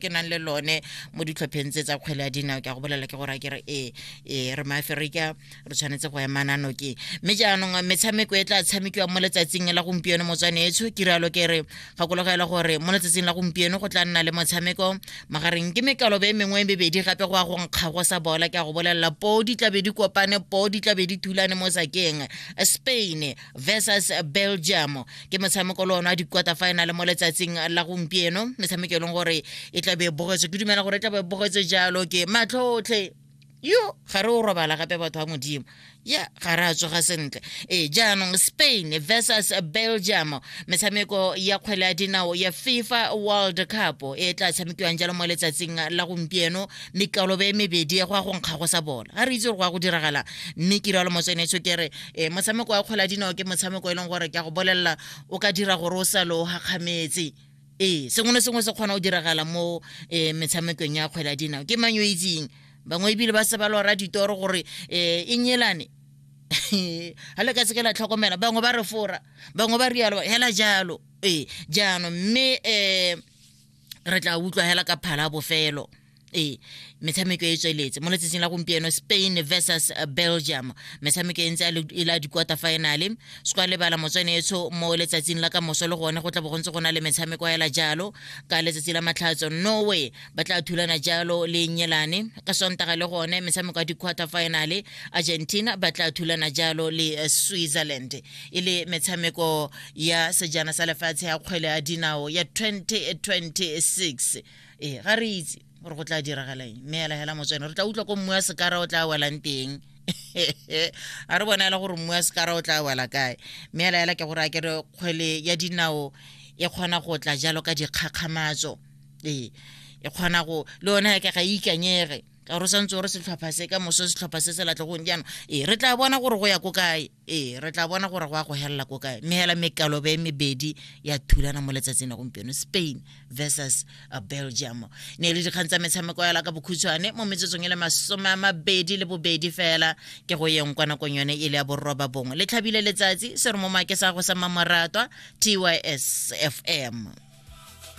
ke nang le lone mo ditlhopheng tse tsa kgwele ya dinao ke a go bolela ke gore a kere ee ee re maaferika re tshwanetse go emana noke mme jaanong metshameko e tla tshamekiwa mo letsatsing la gompieno motswane etsho ke rialo ke re gakologela gore mo letsatsing la gompieno go tla nna le motshameko magareng ke mekaloba e mengwe e mebedi gape go ya go nkgago sa bola ke a go bolelela poo di tlabe di kopane poo di tlabe di thulane mo sakeng spain versus belgium ke motshameko le one wa di-quarter final mo letsatsing la gompieno metshameko e leng gore e tla be e bogetswe ke dumela gore e tla be e bogetswe jalo ke matlhotlhe yo ga re o robala gape batho ba modimo ya ga re a tsoga sentle ee jaanong spain versus belgium metshameko ya kgwele ya dinao ya fifa world cup e tla tshamekiwang jalo mo letsatsing la gompieno mekalobe e mebedi go ya go nkga go sa bola ga re itse gore go ya go diragala mme ke rialo motsenetso ke re e motshameko wa kgwele ya dinao ke motshameko e leng gore ke a go bolelela o ka dira gore o sa lo gakgametse ee sengwe le sengwe se kgona go diragala mo um metshamekong ya kgwele ya dinao ke mang yo itseng bangwe ebile ba se ba lora ditoro gore um e enyelane ga le ka seke la tlhokomela bangwe ba re fora bangwe ba rialo hela jalo ee jaanong mme um re tla utlwa hela ka phala bofelo ee metshameko e tsweletse mo letsatsing la gompieno spain versus uh, belgium metshameko e ntse e la di-quarter finale sekwa lebala motswanetsho mo letsatsing la ka moso le gone go tla bo go ntse go na le metshameko a ela jalo ka letsatsi la matlhatso norway ba tla thulana jalo le nyelane ka sontaga le gone metshameko ya di-quarter finale argentina ba tla thulana jalo le uh, switzerland e le metshameko ya sejana sa lefatshe ya kgwele ya dinao ya 2026 ee ga re itse gore go tla diragalang mme ela hela motswene re tla utlwa ko mmu ya sekara o tla welang teng a re bona e le gore mmu ya sekara o tla wela kae mme ela hela ke gore a ke re kgwele ya dinao e kgona go tla jalo ka dikgakgamatso ee e kgona go le yone ke ga e ikanyege ka gore o santse o re setlhopha se ka moso setlhopha se se latlhegong jaanong ee re tla bona gore go ya ko kae ee re tla bona gore go ya go helela ko kae mme hela mekalobe e mebedi ya thulana mo letsatsing la gompieno spain versus uh, belgium ne e le dikgang tsa metshameko yala ka bokhutshwane mo metsotsong e le masome a mabedi le bobedi fela ke go yeng kwa nakong yone e le ya borroba bongwe le tlhabile letsatsi se re mo make sa go sa mamoratwa tys fm